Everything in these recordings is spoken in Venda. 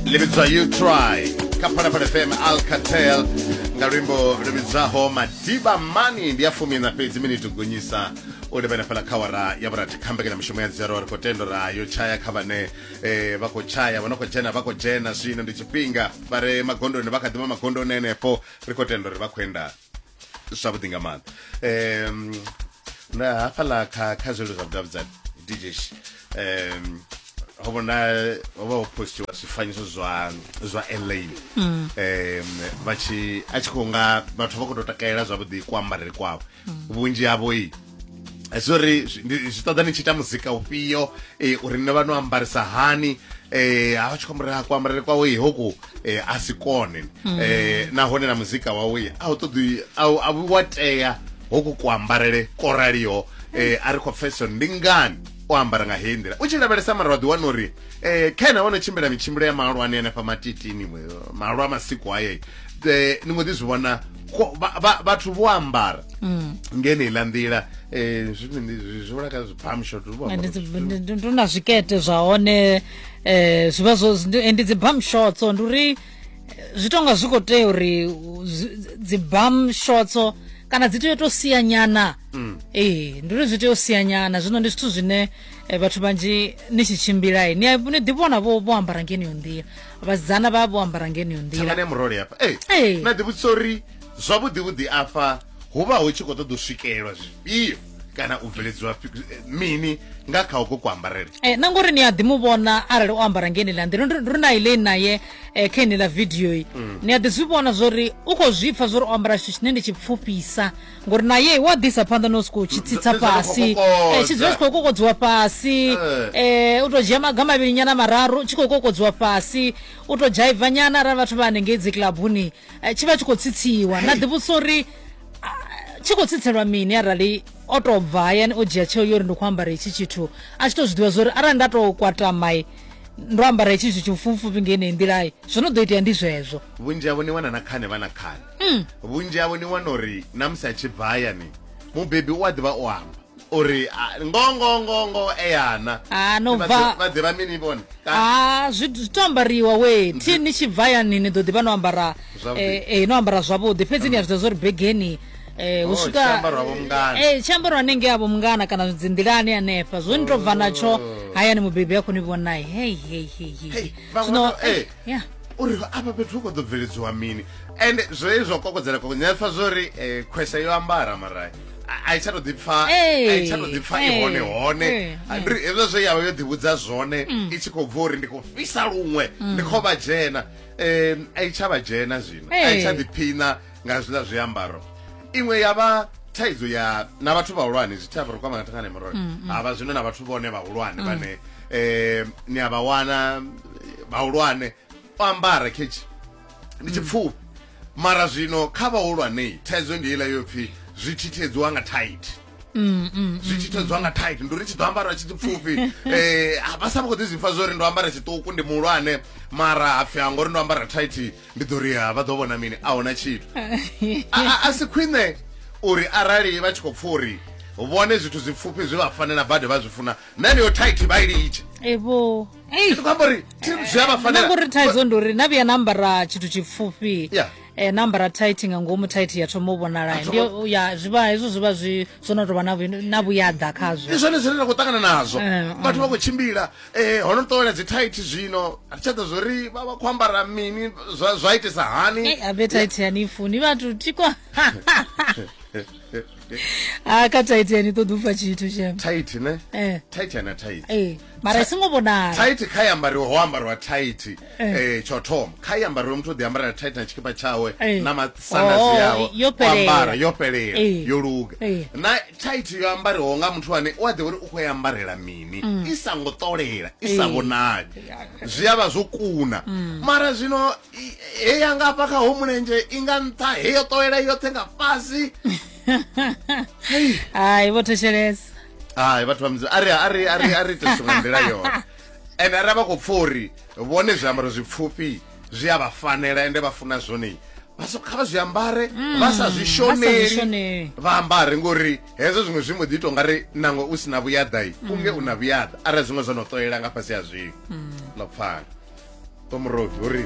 ḽi vhidzwa you try kha phalaphala fm alcatel nga luimbo lu vhidzaho madiba mani ndi a fumi na fhedzi miniti gonyisa u livhana fhala kha wara ya vhurathi kha mbekanyamushumo ya dzero ri khou tendo ra yo tshaya kha vhane eh, vha khou tshaya vha no khou dzhena vha khou dzhena zwino ndi tshifhinga vha re magondoni vha kha ḓivha magondoni henefho ri khou tenda uri vha khou enda zwavhuḓi nga maanḓa um na hafhaḽa kha kha zwelo zwa vhudavhidzani dj um ho vhona ho vha ho postiwa zwifanyiso zwa zwa elaine um vha tshi a tshi khou nga vhathu vha khou tou takalela zwavhuḓi kuambarele kwavho vhunzhi havho i zwo ri zwi ṱoḓa ni tshi ita muzika ufhio um eh, uri nṋe vha no ambarisa hani eh ha tshi khombo ra kuambarele kwawe hoku eh a si kone mm. eh nahone na muzika wawe a u ṱoḓi a vhu wa tea hoku kuambarele ko raliho eh a ri khou pfesesa ndi ngani o ambara nga heyi nḓila u tshi lavhelesa mara wa ḓi wana uri um khaena wo no tshimbila mitshimbilo ya mahulwane anefha matitini malwa masiku haye um eh, ni mbo ḓi zwi vhona ko- vha- vha- vhathu vho ambara Mm. ngeneiḽa nḓila eh, zwi- ndi- zwi- zwi wela kha zwi palm shot vho ambara Ndi- zwithu- ndi- ndi- ndi na zwikete zwa hone eh zwi vha zwo ndi- ndi dzi bum shots ndi uri eh, zwi tonga zwi khou tea uri u- zwi- dzi bum shots kana dzi tea u to sia nyana Mm. ee ndi uri zwi tea u sia nyana zwino ndi zwithu zwine eh, vhathu vhanzhi ni tshi tshimbila ni a- ni ḓivhona vho vho ambara ngeneyo nḓila vhasidzana vha vho ambara ngeneyo nḓila thangana ya murole hafha Ee. ee na ḓivhudzisa uri zwavhuḓi vhuḓi afha hu vha hu tshi khou ṱoḓa u swikelelwa zwifhio kana u bveledziwa fi- eh, mini nga kha uko kuambarele Eh, na ngori ni a ḓi mu vhona arali o ambara nge ni ḽa nḓila Ndo- ndo na ile naye eh, kha ine ḽa video yi ni a ḓi zwi vhona zwori u khou zwi pfa zwori o ambara tshithu tshine ndi tshi pfufhisa ngori naye wa ḓisa phanḓa no sokou tshi tsitsa fhasi eh, tshi dzula tshi khou kokodziwa fhasi eh. um u tou dzhia maga mavhili nyana mararu tshi khou kokodziwa fhasi u tou dzhaiva nyana arali vhathu vha hanengei dzi kilabuni eh, tshi vha tshi khou tsitsiwa na ḓivhusa uri tshi khou tsitselwa mini arali o tou bva hayani o dzhia tsheo yo ri ndi khou ambara itshi tshithu a tshi tou zwi ḓivha zwo uri arali nda tou kwatamai ndo ambara itshi tshithu tshipfufupfi ngei nei nḓilai zwo no ḓo itea ndi zwezwo vhunzhi havho ni wana na khane vha na khane mm. vhunzhi havho ni wana uri na musi a tshi bva hayani mubebi u a ḓivha o amba uri ngongongongo eyana ah, vha ḓivha mini vhone ah, zwi to ambariwa we thi ni tshi bva yani ni ḓo ḓivha no ambara eh, eh, no ambara zwavhuḓi fhedzi ni a zwi ḓa zwa uri begeni eh oh, usika eh chambaro anenge abo mngana kana dzinḓilani hanefha zwo ni to bva natsho oh. hayani mubebi yakho ni vhonai hey hey hey hey no eh yeah uri afha fhethu hu khou ḓo bveledziwa mini and zwo ye zwa kokodzela koko nṋe pfa zwo ri um eh, khwese yo ambara mara a i tsha to ḓipfa a i tsha to ḓipfa i hone hone ndiri hezwo zwe yavha yo ḓivhudza zwone mm. i tshi khou bva uri ndi khou fhisa luṅwe mm. ndi khou vha dzhena um a i tsha vha dzhena zwino a i tsha ḓiphiṋa nga hezwiḽa zwiambaro iṅwe ya vha thaidzo ya na vhathu vhahulwane zwi thava ri kwama nga thangane murole mm, mm. havha zwino na vhathu vhone vhahulwane mm. vhane um ni a vha wana vhahulwane o ambara khetshi ndi tshipfufhi mara zwino kha vhahulwanei thaidzo ndi ila yo pfhi zwi thithiedzwa nga tight Mm, mm, mm, zwi tshi thedzwa nga tight ndi uri tshi ḓo ambara tshi pfufhi um eh, vha sa vha khou ḓi zwipfa zwo ri ndo ambara tshiṱuku ndi muhulwane mara hapfi ha ngori ndo ambara tight ndi ḓo ri ha vha ḓo vhona mini a huna tshithu A- a- a si khwine uri arali vha tshi khou pfa uri vhone zwithu zwipfufhi zwi vha fanela badi vha zwi funa na heneyo thaithi vha i litshe evo ndi khou amba uri thi- zwi a vha fanela nangori thaidzo ndi uri na vhuya na ambara tshithu tshipfufhi Yeah. eh, na ambara tight nga ngomu tight ya thoma u vhonala A ndi thoma- ya zwivha hezwo zwivha zwi zwo no tovha na vhu- na vhuyaḓa khazwo ndi zwone zwine ra khou ṱangana nazwo Eh, vhathu vha khou tshimbila ee ho no tovhela dzi thaithi zwino a tsha ḓo zwori vha vha khou ambara mini zwa zwa itisa hani Ei, appetite yani funi vhathu tikwa a ka tight yani ṱoḓi u pfa tshithu shem thaithi ne eh thaithi ana thaithi eh mara i songo vhonala thaithi kha i ambariwa ho ambariwa thaithi Eh. eh tsho thoma kha i ambariwe muthu o ḓi ambara na tight na tshikipa tshawe eh. na masandasi oh, yawe ambara yo fhelela eh. yo luga na tight yo ambariwaho nga muthu ane u a ḓivha uri u khou i ambarela mini mm. i songo ṱolela i sa vhonali zwi a vha zwo kuna mm. mara zwino he ya nga hafha kha ho mulenzhe i nga nṱha he yo ṱolela yoṱhe nga fhasi hai vho thetshelesa hai vhathu vha mudzimu ari ari ari ari ite zwiṅwe nḓila yone Ende arali vha khou pfa uri vhone zwiambaro zwipfufhi zwi a vha fanela ende vha funa zwone vha so kha vha zwi ambare mm, vha sa zwi shoneli vha ambare ngori hezwo zwiṅwe zwi mbo ḓi ita ungari nangwe u si na vhuyaḓai mm. unge u na vhuyaḓa arali zwiṅwe zwo no ṱolela nga fhasi ha zwiṅwe mm. no pfala tomuroti uri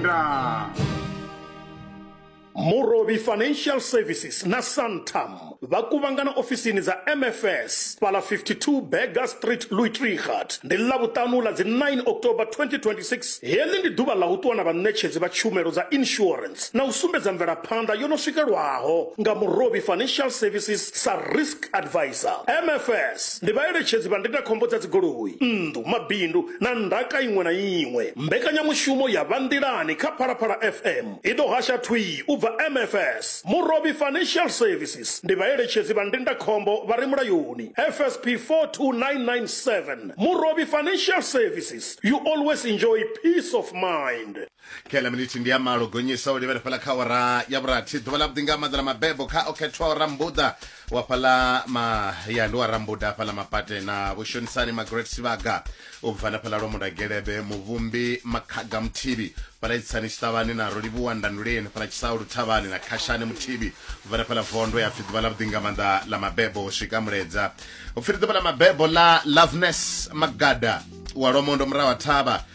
ndaa murobi financial services na santam vha kuvhangana ofisini dza mfs fhala 52 berger street luitrigat ndi ḽavhuṱanu ḽa dzi 9 october 2026 heḽi ndi ḓuvha ḽa u ṱuwa na vhaṋetshedzi vha tshumelo dza insurance na u sumbedza mvelaphanḓa yo no swikelwaho nga murobi financial services sa risk advisor mfs ndi vhaeletshedzi vha ndindakhombo dza dzigoloi nnḓu mabindu na ndaka iṅwe na iṅwe. Mbekanyamushumo ya Vha Nḓilani kha Phalaphala FM i ḓo hasha thwii u bva MFS. Murovhi Financial Services ndi vhaeletshedzi vha ndindakhombo vha re mulayoni, FSP 42997. Murovhi Financial Services, you always enjoy peace of mind. kela miniti ndi ya malo gonyisa u livhela fhala kha ora ya vhurathi ḓuvha ḽa vhuḓi nga maḓa ḽa mabebo kha o khethwa o rambuḓa wa fhala mahaya ndi wa rambuḓa fhala mapate na vhushonisani magret sivaga u bva na fhala lwa mudagelebe muvhumbi makhaga muthibi fhala itsani tshiṱavhani na rolivhuwa ndanduleni fhala tshisau luthavhani na khashani muthibi u bva na fhala vondo ya pfi ḓuvha ḽa vhuḓi nga maḓa ḽa mabebo u swika muledza u pfiri ḓuvha ḽa mabebo ḽa loveness magada wa lwamondo murahu ha thavha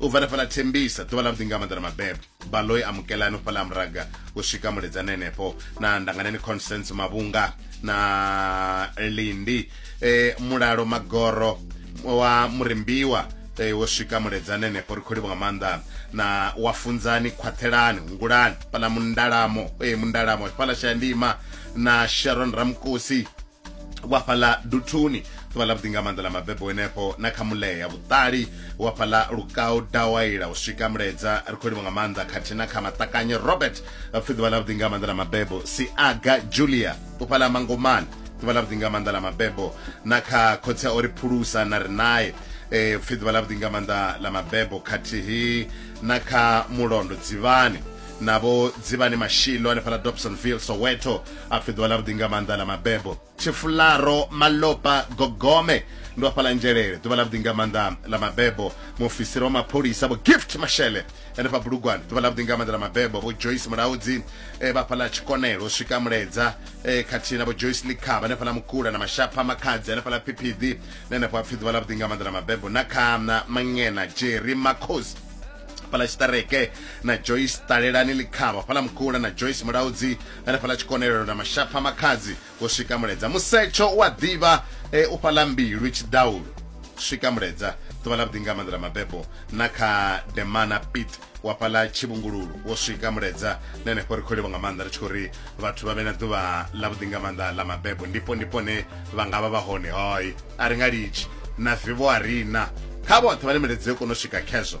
u bva fhaḽa thembisa ḓuvha ḽa vhuḓinga maḓana mabebo baloi amukelani u fhaḽa muraga u swika muledzani henefho na ndanganeni constance mavhunga na lindi e, mulalo magoro wa murimbiwa e, wo swika muledzani henefho ri khou livha nga maanḓa na wa funzani khwaṱhelani hungulani fhaḽa mundalamo e, mundalamo fhaḽa shayandima na sharon ramkusi wa fhaḽa duthuni ḓuvha ḽa vhuḓi nga maanḓa ḽa mabebo henefho na kha mulea ya vhuṱali wa fhaḽa lukau dawaila u swika muledza ri khou livha nga maanḓa khathihi na kha maṱakanye robert pfhi ḓuvha ḽa vhuḓi nga maanḓa ḽa mabebo siaga julia u fhaḽa mangomani ḓuvha ḽa vhuḓi nga maanḓa ḽa mabebo na kha khotsi o ri phulusa na ri naye um pfhi ḓuvha ḽa vhuḓi nga maanḓa ḽa mabebo khathihi na kha mulondo dzivhani navho dzivhani mashilo hanefhaḽa dobsonville soweto a fheḓiwa ḽa vhuḓi nga maanḓa ḽa mabebo tshifularo malopa gogome ndo afhala nzhelele ḓuvha ḽa vhuḓi nga maanḓa ḽa mabebo muofisiri wa mapholisa vho gift mashele henefha bulugwane ḓuvha ḽa vhuḓi nga maanḓa ḽa mabebo vho joyce mulaudzi e eh, vha fhaḽa tshikonelo swika muledza eh, khathihi na vho joyce likhaba henefha ḽa mukula na mashapha makhadzi henefha ḽa phiphidi na henefho hapfi ḓuvha ḽa vhuḓi nga maanḓa ḽa mabebo na khana mangena jerry makhosi fhala tshiṱereke na joyce ṱalelani likhaba fhala mukula na joyce mulaudzi hanefhaḽa tshikonelelo na mashapha makhadzi wo swika muledza musetsho wa ḓivha e, u fhaḽa mbilu tshiḓaulo swika muledza ḓuvha ḽa vhuḓi nga maanḓa ḽa mabebo na kha demana pit wa fhaḽa tshivhungululu wo swika muledza na henefho ri khou livha nga maanḓa ri tshi khou ri vhathu vha vhe na ḓuvha ḽa vhuḓi nga maanḓa ḽa mabebo ndipo ndipo ne vha nga vha vha hone hoi a ri nga litshi na vivo a rina kha vhoṱhe vhane miledza yo kona u swika khezwo